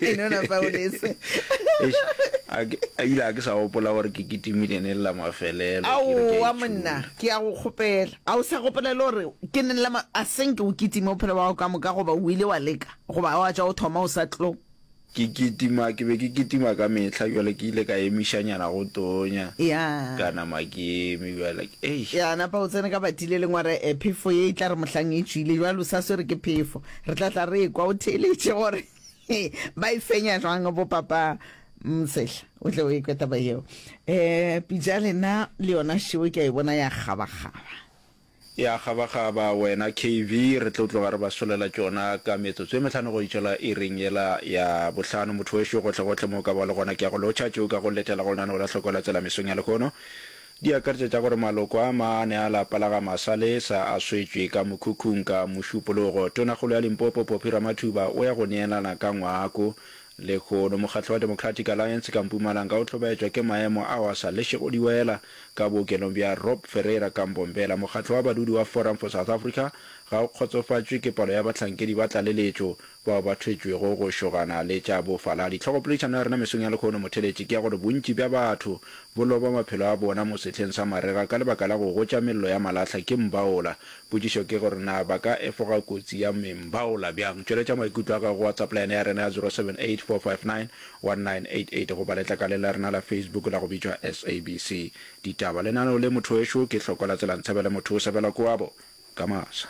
e no na paulese a ile a ke sa gopola gore ke kitimile ne lela mafelelo ao wa monna ke ya go kgopela a o sa gopola le gore ke ne lela a seng ke o kitime o phela wa go ka moka goba o ile wa leka goba wa tša o thoma o sa tlo ke kitima ke be ke kitima ka mehla jale ke ile ka emišanyana go tonya ya kana makemi jale ei ya napa o tsene ka batile lengware eh, phefo ye e tla re mohlang e tšwile jale o sa swere ke phefo Re tla tla re ekwa o theeletše gore ba e fenya jwang bo papa Msehla o tle o ekwe taba yeo. Eh pitša lena le yona šeo ke a e bona ya kgabakgaba. Ya kgabakgaba wena KV re tlo tloga re ba solela tšona ka metsotso e mehlano go itšola iring yela ya bohlano. Motho wešo gohle gohle mo o ka ba o le gona ke a go lotšha tšeo ka go letela go lenaneo la Hloko la Tsela mesong ya lehono. Di akaretša tša gore maloko a maane a lapa la ga Masalesa a swetšwe ka mokhukhung ka Mošupologo. Tonakgolo ya Limpopo Poppy Ramathuba o ya go neelana ka ngwako. Lehono mokgatlo wa Democratic Alliance ka Mpumalanga o hlobaetšwa ke maemo ao a sa lešego diwela ka bookelong bja Rob Ferreira ka Mbombela. Mokgatlo wa badudi wa Forum for South Africa ga o kgotsofatšwe ke palo ya bahlankedi ba tlaleletšo bao ba thwetšwego go šogana le tša bofaladi. Tlhogopoledišano ya rena mesong ya lehono motheletši ke ya gore bontši bja batho bo loba maphelo a bona mo sehleng sa marega ka lebaka la go gotša mello ya malahla ke mbaola. Potšišo ke gore na ba ka efoga kotsi ya mbaola bjang? Tšweletša maikutlo a gago go WhatsApp line ya rena ya 0784591988 goba letlakaleng la rena la Facebook la go bitšwa SABC Ditaba. Lenaneo le, Mothowešu ke Hloko la Tselanshabele Mothosebela Koabo Kamasa.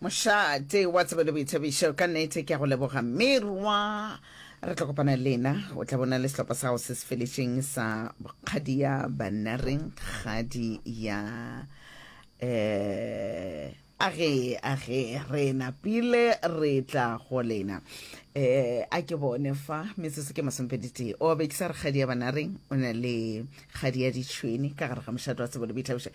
mošate wa tsebo le boithabišo ka nete ke a go leboga merwa re tla kopana lena o tla bona le sehlopha sa gago se se felešeng sa kgadi ya banareng kgadi ya um age age re napile re tla go lena um a ke bone fa metsotso ke masompeditee o be ke sa re kgadi ya banareng o na le kgadi ya ditšhweni ka gare ga mošate wa tsebo le boithabišo